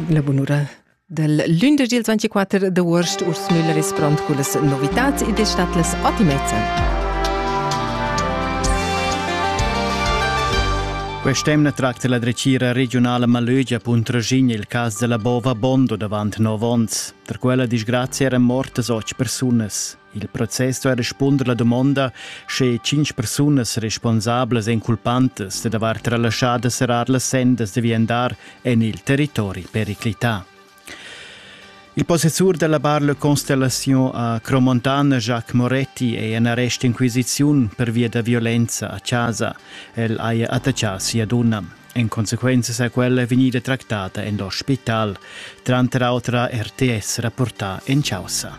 La bunura del lündesch il 24 d'uost Urs Müller es pront cullas novitats ed es stat las ottimezza. Quest'emna tracta la drecira regionala Malögia Puntraschin il cas della Bova Bondo davant 9 ons. Tra quella disgrazia eran mortas 8 persunas. Il process sto respunder la dumonda, sche cinq persunas responsablas èn culpantas da aver relaschada serrar las sendas da viandar en il territori periclità. Il possessur della bar Le Constellation a Cromontana, Jacques Moretti, è in arrest inquisiziun per via da violenza a casa. El haja attaccià sia donna. En consequenza sa quella vegnida tractata en l'ospital, tranter autra RTS rapportà en caussa.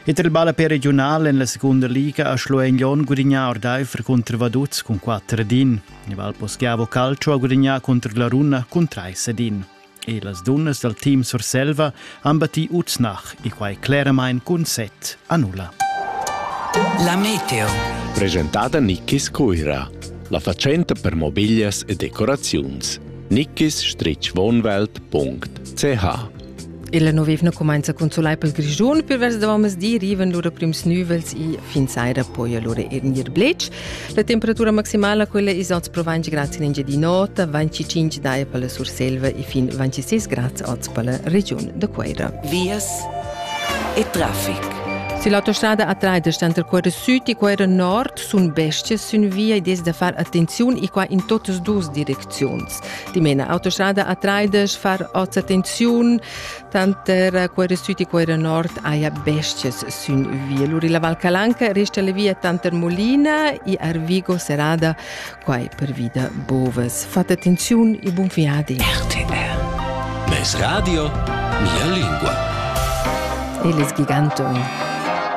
Et il ballapè regional en la seconda liga a Schlueignon gudignà ordaifer contro Vaduz con 4 din. Il Valposchiavo Calcio ha gudignato contro la Runa con 3 din. E las dunnas dal team Surselva han battì Uznach e quai cleramain cun set a nulla. La Meteo. Presentada Nikkis Cuira, la fatschenta per mobiglias e decoraziuns. nikkis-wohnwelt.ch Ella novevna cumainza cun sulai pel Grischun per vers davant masdì rivan lura prims nüvels e fin saira poi allura er gnir bletsch. La temperatura maximala quella is oz pro 20 grads in Engiadin'Ota, 25 daia per la Surselva e fin 26 grads oz per la regiun da Queira. Vias e traffic. Se l'autostrada attraida sta tra Queira Sud e Queira Nord sun bestie sün via e des da far attenziun e qua in totas dus direcziuns. Dimena autostrada attraida far oz attenziun, Tanter quei süt e quei nord haja bestias sün viel. Uri la Val Calanca resta la via tanter Molina e Arvigo serrada quai per vida bovas. Fate attenziun e buon viadi. RTR. Mes radio, mia lingua. Il giganto.